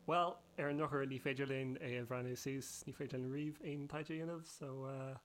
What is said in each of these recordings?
Bhuel, ar an ndrochuair ní féidir linn é a bhreathnú suas, ní féidir linn riamh aon taighde a dhéanamh, so ar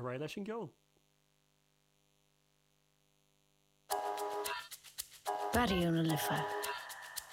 aghaidh leis an gceol! Barrio na Life.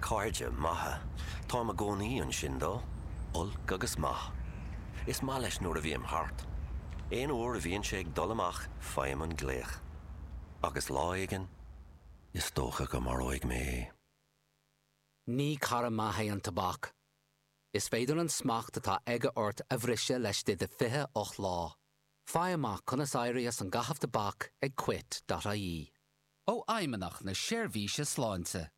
Cairde maithe. Táim i gcónaí ansin dó. Olc agus maith. Is maith leis nuair a bhím thart. Aon uair a bhíonn sé ag dul amach faighim an glaoch. Agus lá éigin, is dócha go maróidh mé é. Ní cara maith é an tobac. Is féidir an smacht atá aige ort a bhriseadh laistigh de 28 lá. Faigh amach conas éirí as an gcaitheamh tobac ag quit.ie. ó Fheidhmeannacht na Seirbhíse Sláinte.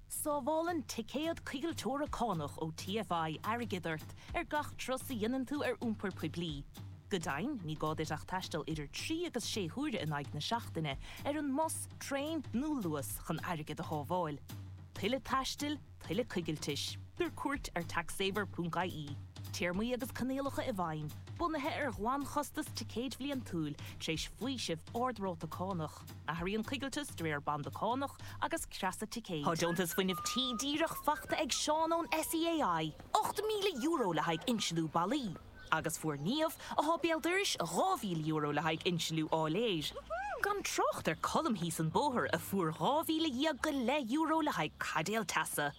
Sábhálann ticéad coigilteora cánach ó TFI airgead ort ar gach turas a dhéanann tú ar iompar poiblí. Go deimhin, ní gá duit ach taisteal idir trí agus sé huaire in aghaidh na seachtaine ar an mbus, traein nó Luas chun airgead a shábháil. Tuilleadh taistil? tuilleadh coigiltis. Tabhair cuairt ar taxsaver.ie. Téarmaí agus coinníollacha i bhfeidhm, bunaithe ar ghlanchostas ticéid bhliantúil, tar éis faoiseamh ard-ráta cánach. Athraíonn coigilteas de réir banda cánach agus creasa ticéid. Tá Deontas Fuinnimh Tí díreach faighte ag Seán ón SEAI, €8,000 le haghaidh insliú ballaí. Agus fuair Niamh, atá béal dorais, €2,000 le haghaidh insliú áiléir. Gan trácht ar Cholm thíos an bóthar a fuair dhá mhíle dhéag go leith euro le haghaidh caidéal teasa.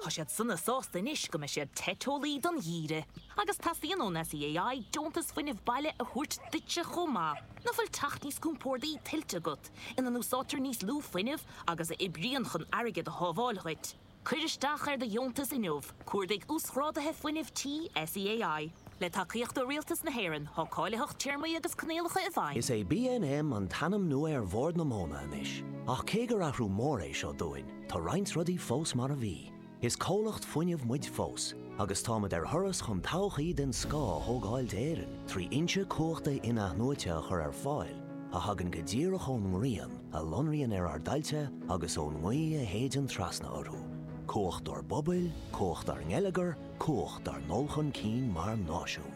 Tá siad sona sásta anois go mbeidh siad te teolaí don gheimhreadh. Agus teastaíonn ón SEAI deontas fuinnimh baile a thabhairt duitse chomh maith. Nach bhfuil teach níos compórdaí tuillte agat, ina n-úsáidtear níos lú fuinnimh agus a oibríonn chun airgead a shábháil dhuit? Cuir isteach ar do dheontas inniu, cuardaigh Uasghráduithe Fuinnimh Tí SEAI. Le tacaíocht ó Rialtas na hÉireann, tá cáilitheacht téarmaí agus coinníollacha i bhfeidhm. Is é BNM an t-ainm nua ar Bhord na Móna anois, ach cé gur athrú mór é seo dúinn, tá roinnt rudaí fós mar a bhí. Is comhlacht fuinnimh muid fós, agus táimid ar thuras chun todhchaí den scoth a thógáil d'Éirinn trí fhoinsí cumhachta in-athnuaite a chur ar fáil, a thagann go díreach ón ngrian, a lonraíonn ar ár dtailte agus ón ngaoth a shéideann trasna orthu, cumhacht dár bpobail, cumhacht dár ngeilleagar, cumhacht dár ndul chun cinn mar náisiún.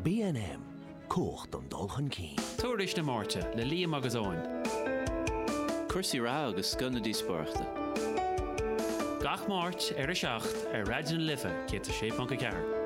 BNM, Cumhacht don dul chun cinn. Tuairisc na Máirte le Liam agus Eoin. Cúrsaí reatha agus scoth na díospóireachta. Gach Máirt ar a 7 ar Raidió na Life 106.4.